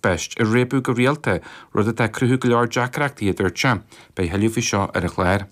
beirt á réabadh go rialta, rud atá ag cruthú go leor deacaireachtaí, a dúirt sé. Beidh tuilleadh faoi seo ar an gclár.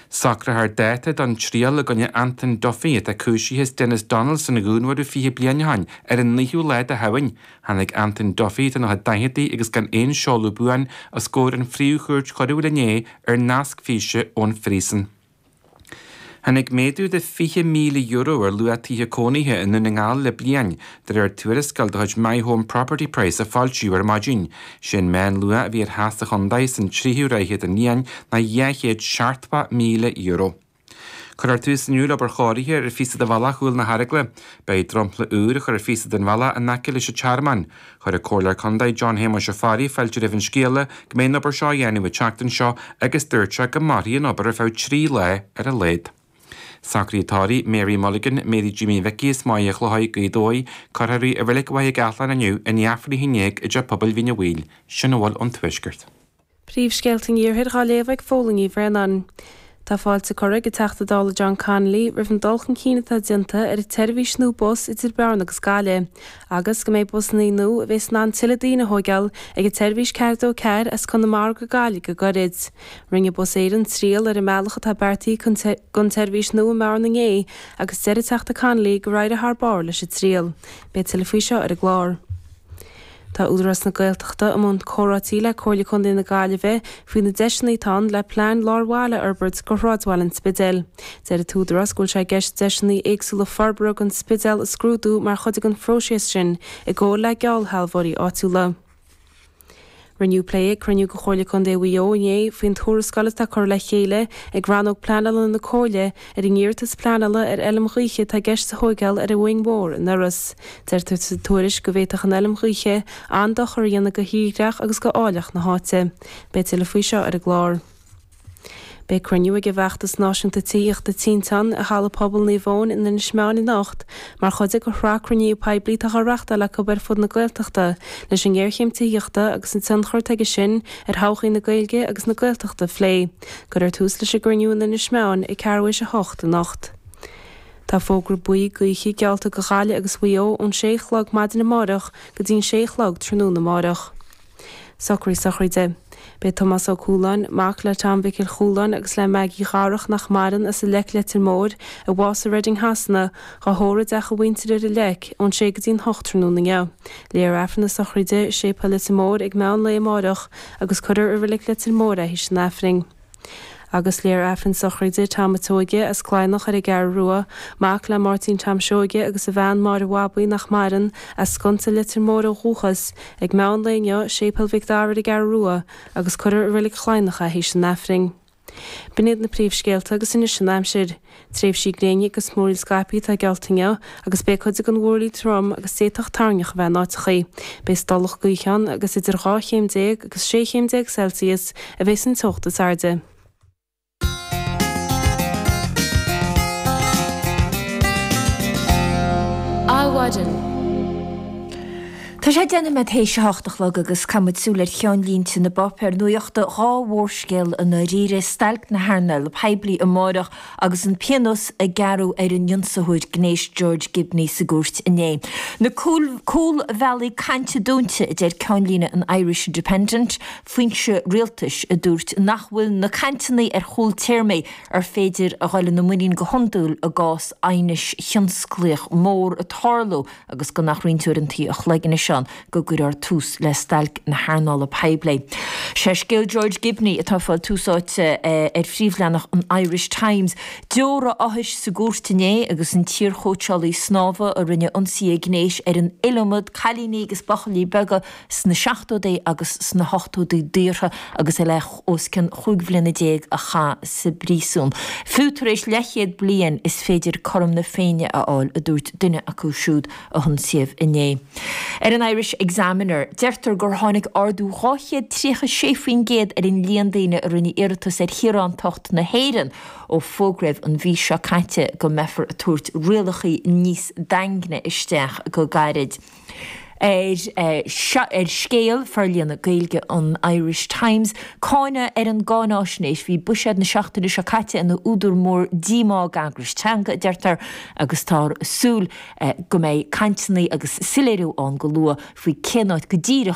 Socrófar dáta don triail i gcoinne Anton Duffy atá cúisithe as Denis Donaldson a dhúnmharú 20 bliain ó shin. Ar an naoú lá de Shamhain, tháinig Anton Duffy, atá ina dhaicheadaí agus gan aon seoladh buan, os comhair na Príomh-Chúirte Choiriúil inné ar nasc físe ón phríosún. Tháinig méadú de €20,000 ar luach tithe cónaithe i nDún na nGall le bliain, de réir tuarascáil de chuid My Home Property Price a foilsíodh ar maidin. Sé an meán luach a bhí ar theach sa chontae san tríú ráithe den bhliain ná dhá chéad seachtó míle euro. Cuirfear tús inniu le obair chóiriúcháin ar phíosa de bhealach Chúl na hEaragaile. Beidh dromchla úr á chur ar phíosa den bhealach in aice leis an Tearmann. Chuir an Comhairleoir Contae John Shéamuis Ó Fearraigh fáilte roimh an scéala go mbeidh an obair seo á dhéanamh an tseachtain seo agus dúirt sé go mairfidh an obair ar feadh trí lá ar a laghad. Socruithe tórraimh, Mary Mulligan, Mary Jimí Mhicí as Machaire Chlochair, Gaoth Dobhair, cuirfear í i Reilig Mhachaire Gathlán inniu i ndiaidh Aifreann a 11 i dTeach Pobail Mhín Uí Bhaoill. Sin a bhfuil ón Tuaisceart. Príomhscéalta an Iarthair dhá léamh ag Fáilín Ní Bhraonáin. Tá fáilte curtha ag an Teachta Dála John Connolly roimh an dul chun cinn atá déanta ar an tseirbhís nua bus idir Bearna agus Gaillimh agus go mbeidh busanna nua a bhéas in ann tuilleadh daoine a thóigeáil ag an tseirbhís 424 as Conamara go Gaillimh go gairid. Rinne Bus Éireann triail ar an mbealach atá beartaithe don tseirbhís nua i mBearna inné agus deir an Teachta Connolly gur éirigh thar barr leis an triail. Beidh tuilleadh faoi seo ar an gclár. Tá Údarás na Gaeltachta i mbun comhráití le Comhairle Contae na Gaillimhe faoi na deiseanna atá ann le plean lár baile a fhorbairt go shráidbhaile an Spidéil. Deir an tÚdarás go bhfuil sé i gceist deiseanna éagsúla forbartha don Spidéal a scrúdú mar chuid den phróiseas sin i gcomhar le geallshealbhóirí áitiúla. Rinneadh plé ag cruinniú de Chomhairle Contae Mhaigh Eo inné faoin tuarascáil atá curtha le chéile ag Rannóg Pleanála na Comhairle Ar an iarratas pleanála ar Fheilm Ghaoithe atá i gceist a thóigeáil ar an Mhuing Mhór in Iorras, deirtear sa tuairisc go bhféadfadh an Fheilm Ghaoithe an-dochar a dhéanamh go thírdhreach agus go áilleacht na háite. Beidh tuilleadh faoi seo ar an gclár. Beidh cruinniú ag an bhFeachtas Náisiúnta Tithíochta Tinteán i Halla Pobail Naomh Eoin in Inis Meáin anocht mar chuid de shraith cruinníú poiblí atá dhá reachtáil acu ar fud na Gaeltachta leis an ngéarchéim tithíochta agus an tionchar atá aige sin ar thodhchaí na Gaeilge agus na Gaeltachta a phlé. Cuirfear tús leis an gcruinniú in Inis Meáin ag ceathrú théis a hocht anocht. Tá fógra buí gaoithe geallta go Ghaillimh agus Maigh Eo ón sé a chlog maidin amárach go dtí'n sé a chlog tráthnóna amárach. Socruithe sochraide. Beidh Tomás Ó Cualáin, mac le Tom Mhicil Chualáin agus le Maggie Dharach nach maireann, as an Leic Leitir Móir, a bhásaigh i Reading Shasana, dhá thórramh i dteach a mhuintire ar an Leic ón sé go dtí'n hocht tráthnóna inniu. Léifear Aifreann na sochraide i Séipéal Leitir Móir ag meán lae amárach, agus cuireadh i reilig Leitir Móir é théis an Aifrinn. Agus léifear Aifreann sochraide Tom a' tSeoige as Cladhnach ar an gCeathrú Rua, mac le Máirtín Tom Seoige agus a bhean Máire Bhabaí nach maireann, as Sconsa Leitir Móir ó dhúchas, ag meán lae inniu, Séipéal Mhic Dara ar an gCeathrú Rua, agus cuirfear i reilig Chladhnach é théis an Aifrinn. B'in iad na príomhscéalta agus anois an aimsir. Tréimhsí gréine agus múraíl scaipthe atá geallta inniu agus beidh cuid den mhúraíl trom agus d'fhéadfadh toirneach a bheith in áiteachaí. Beidh stolladh gaoithe ann agus idir dhá chéim déag agus sé chéim déag Celsius a bheidh san teocht is airde. Adhmhaidin. Tá sé ag déanamh nóiméad théis a hocht a chlog agus caithfidh muid súil ar cheannlínte na bpáipéar nuachta, dhá mhórscéal i ndáiríre, stailc na hearnála poiblí amárach agus an pionós a gearradh ar an ionsaitheoir gnéis George Gibney sa gcúirt inné. Na cúlbhealaí cainte dúnta a deir ceannlíne an Irish Independent, foinse rialtais a dúirt nach bhfuil na cainteanna ar chúl téarmaí ar féidir a dhul ina muinín go hiondúil i gcás aighnis thionsclaíoch mhór ag tarlú agus gan ach roinnt uaireantaí an chloig anois ann go gcuirfear tús le stailc na hearnála poiblí. Sé scéal George Gibney atá fáil tús áite ar phríomhleathanach an Irish Times, deora áthais sa gcúirt inné agus an t-iarchóitseálaí snámha a rinne ionsaithe gnéis ar an iliomad cailíní agus buachaillí beaga sna seachtóidí agus sna hochtóidí daortha agus é le os cionn chúig bhliana déag a chaitheamh sa bpríosún. Fiú tar éis leathchéad bliain is féidir cothrom na Féinne a fháil, a dúirt duine acu siúd a hionsaíodh inné. Ar an Irish Examiner, deirtear gur tháinig ardú 236% ar an líon daoine a rinne iarratas ar shaoránacht na hÉireann ó fógraíodh an mhí seo caite go mbeifear ag tabhairt rialachaí níos daingne isteach go gairid. ar Scéal, forlíonadh Gaeilge an Irish Times, cáineadh ar an gcáinaisnéis, bhí buiséad na seachtaine seo caite ina údar mór díomá ag eagrais teanga, a deirtear, agus táthar ag súil go mbeidh cainteanna agus soiléiriú ann go luath faoi cén áit go díreach